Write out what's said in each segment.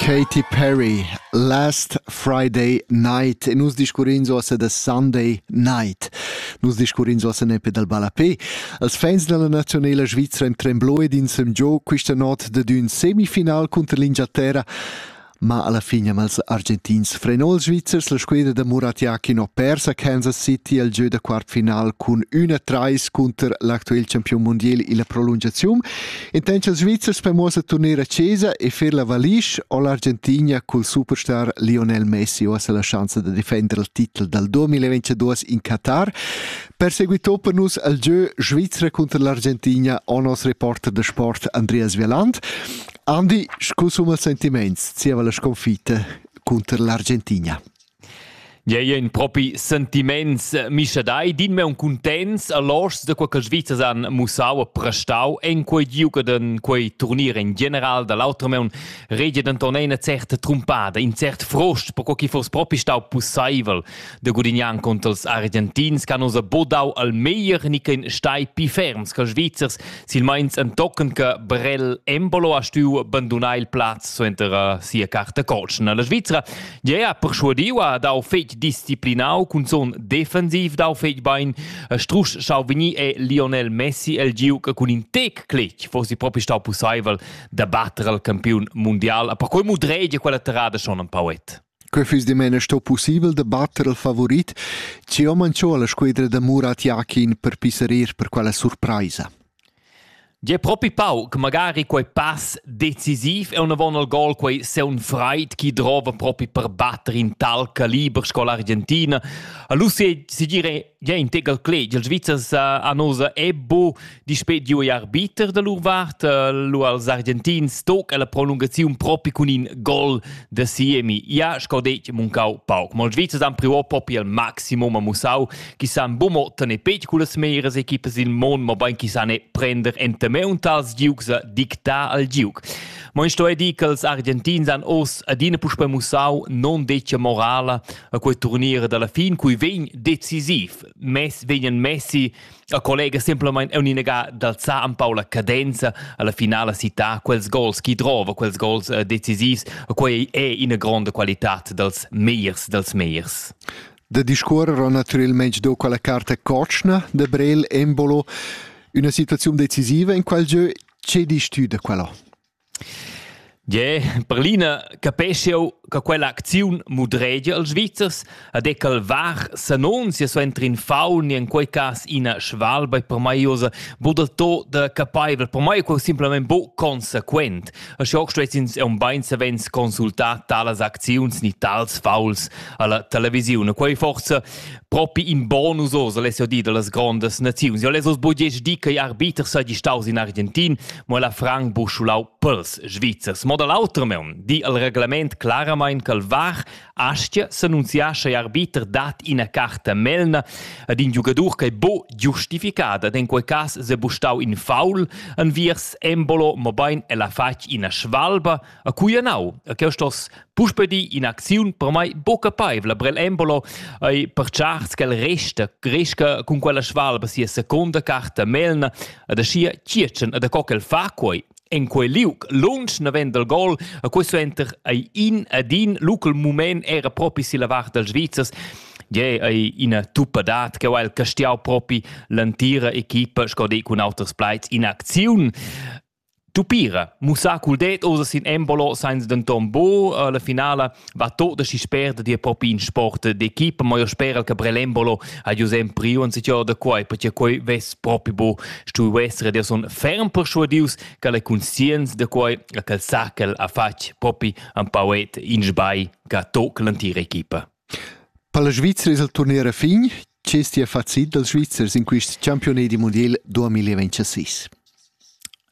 Katy Perry, Last Friday Night e nus discurrins ossa da Sunday Night. Nus discurrins ossa nepe dal ballapé. Als fans della nazionala svizra in tremblò ed in semgiò questa not da d'ün semifinal contro l'Inghilterra ma alla fine amb els argentins frenò els svizzers la squadra da Murat Yakin ho persa Kansas City al gieu da quartfinal cun 1-3 cunter l'actuel campion mondial illa prolungaziun In tencha Svizzers per muossar turnier a Cesa e fer la valisch o l'Argentina cul superstar Lionel Messi ho la schanza da defender il titel dal 2022 in Qatar. Perseguitò per nus al gieu Svizra contro l'Argentina o nos reporter da sport Andreas Vieland. Andi, scu suma sentiments zieva la sconfitta contro l'Argentina? Gie, in propi sentiments mischadai, din me un cuntents a loschs da quei che Svizzers han mussau e prestau en quei giug en quei turnier in general dall'autra meun regia denton ina certa trumpada, in cert frost per quei che foss propi stau pusseivel da gudignar contro els Argentins che hanno bodau al meglier ni che stai pi ferms che Svizzers silmeins entochen che Brel Embolo ha stuiu bandunar il plaz suenter sia carta colsna. La Svizzera Gea perschuadiu ha dau fetg disciplinau cunzun defensiv dau fetg bein e strusch schau vegnir è Lionel Messi el giu che cun in tec clic fossi propi stau pusseivel da batter al campiun mundial a per quei mudregia quella terrada schon ein poet. Quei füss dimena sto pussibel da batter il favorit, ci ho manchò la squedra da Murat Yakin per pisserir per quella surpraisa. Gie propi pau che magari quei pass decisiv e unavon al gol quei seun freid chi drova propi per batter in tal caliber sco l'Argentina. Allora se, se dire gie in tegal clet, ils Svizzers han usa Ebbo dispet giu e arbiter da lur vart, lu als Argentins toc e la prolungaziun propi cun in gol da Siemi. Ja, sco detg, muncau pauc. Ma ils Svizzers han priò propi al maximum a mussau chi san buca mo tener pegl cullas meras equipas il mon, mobein chi san prender enta meun tals giugs a dictar al giug. Mo in sto è dir che els Argentins han os adina puspe mussau non decia morala a quei turnier dalla fin, cui vegn decisiv. Mes vegnan Messi a collega semplamain uninaga d'alzar un pau la cadenza alla finala cità quels gols chi drova, quels gols eh, decisivs, quei è ina grande qualità dels meiers, dels meiers. Da discuorrer ho natürelmaing do quella carta cotschna da Brel embolo üna situaziun decisiva in qual giö che disch tü da quella? Yeah, per l'ina capescio che quella acziun mudregia als Svizzers ad e cal var s'annunzia so entri in faun in quei cas ina schwalba per mai osa bod to da capaivel per mai è quel simplemente bo consequent A schoc stuessins eun bein savens consultar talas acziuns ni tals fauls alla televisiun. Quei forza propi in bonus os alessio di dallas grondas naziuns. Jo lesos bugesch di che arbiter seigi staus in Argentin, mo la Frank buschulau pels Svizzers. Mo dall'auter meun di al reglement claramain calvar Aschia s'annunziascha igl arbiter dad ina carta melna ad in giugadur ch'ei buca giustificada ed en quei cass sebustau in faul enviers Embolo, mobein el ha fatg ina svalba a cui anau. E cheu stos puspei dir in'acziun per mei buca capeivla per el Embolo ei pertscharts ch'el resta, cresca cun quella svalba sia seconda carta melna ed aschia tschiertschen ed co ch'el fa quei En quei liug lunsch naven dal gol a quei suenter ei in ed in local mument era propi silla vart dals Svizzers Gie ei ina tuppadad che ha el castiau propi l'entira equipa sco de cun auters plaids in acziun. Tupira, mussà cul det oder sin Embolo, seins denton bo. Äh, la finala Va tot aschi spert dir propi in sport d'equipa, mo io speral che Brelembolo ha giu sem priu un sitio da quai, perché quei vess propi bu stuiu essere der son ferm persuadius che le conscienz de quei a quel sacel ha fatg propi un pauet in sbai che toc l'antira equipa. Per la Svizzera è il turnier a fin, Ch'es ti facit dals Svizzers in quist champiunedi mundiel 2026?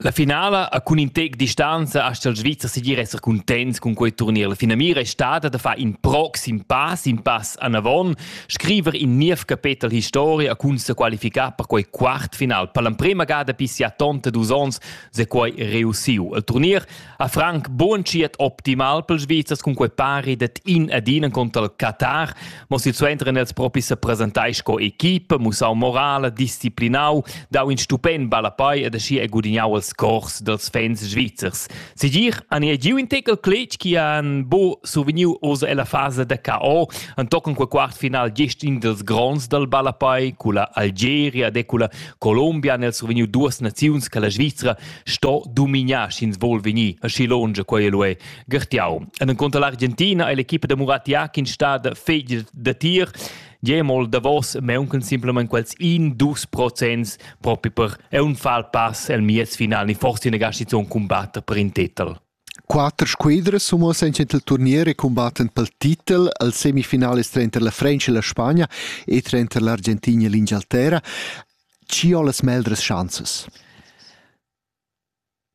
La finala a cun in tec distanza astga il Svizzer segir esser cuntents cun quei turnier. La finamira è stata da far in proxim pass, in pass anavon, scriver in niev capetel historia cun se qualificar per quei quartfinal. Per l'emprema gada pissi a tonta dus ons se quei reussiu. Il turnier ha Frank bunschiet optimal pels Svizzers cun quei pari det in ed in contra il Qatar, mo silsuenter els propi se presentai sco equipe, mussau morale, disciplinau, dau in stupend ballapai ed aschi e gudignau els cors dels fans svizzers. Sigir han ei giu in tekel cletg chi han bo suveniu oz ella fase da KO, an tochen quel quart final gest in dels gronds dal ballapai, culla Algeria, de culla Colombia han els suveniu duas naziuns che la Svizzera sto dominar sch'ins vol vegnir aschi longe quei el è gertiau en contra l'Argentina e l'equipa da Muratia che stada fegl da tir Jemol davos meunken simplement quels in dus procents propi per è un fal pass el mies final ni forse negasci zon combatter per in titel. Quatter squadras semuossan denter il turnier e cumbattan pel titel al semifinalist tranter la French e la Spagna e tranter l'Argentina e l'Ingialterra. Chi ho las meglras schanzas?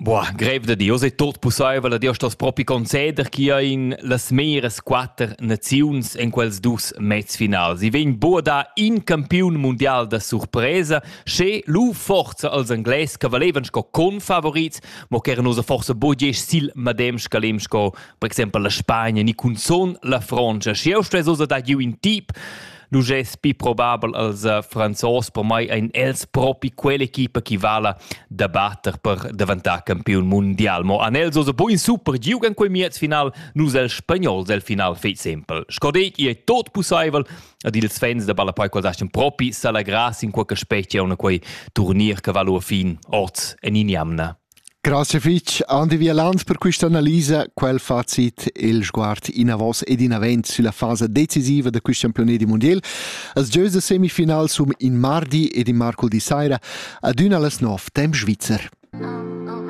Boah, grev da Dios è tot pussaivel, Dios stos propi conceder chi ha in las meras quatter naziuns en quels dus mezfinals. I vegn boda in campiun mundial da surpresa, sche lu forza als Anglais che valevan sco confavorits mo ch'era nus forsa bugesch sil medem scalem sco per exempel la Spagna ni cunzon la Frontscha. Schi eu stuess osa dar giu in tip nu gess pi probabel als eh, Franzos per mai ein els propi quell'equipa chi vala da batter per daventar campiun mondial. Mo an els osa buin super giug en quei miez final, nus el spagnols el final fei sempel. Sco detg, i ei tot pusseivel ed ils fans da ballapei qual dastan propi s'allegrar sin quella specia una quei turnir che valu a fin oz en injamna. Grazie fitch Andi Vielanz per questa analisa, quel facit il sguard in avos ed in avent sulla fase decisiva da questo campione di mondial. As giös da semifinal sum in mardi ed in marcul di saira ad una las nov temp svizzer.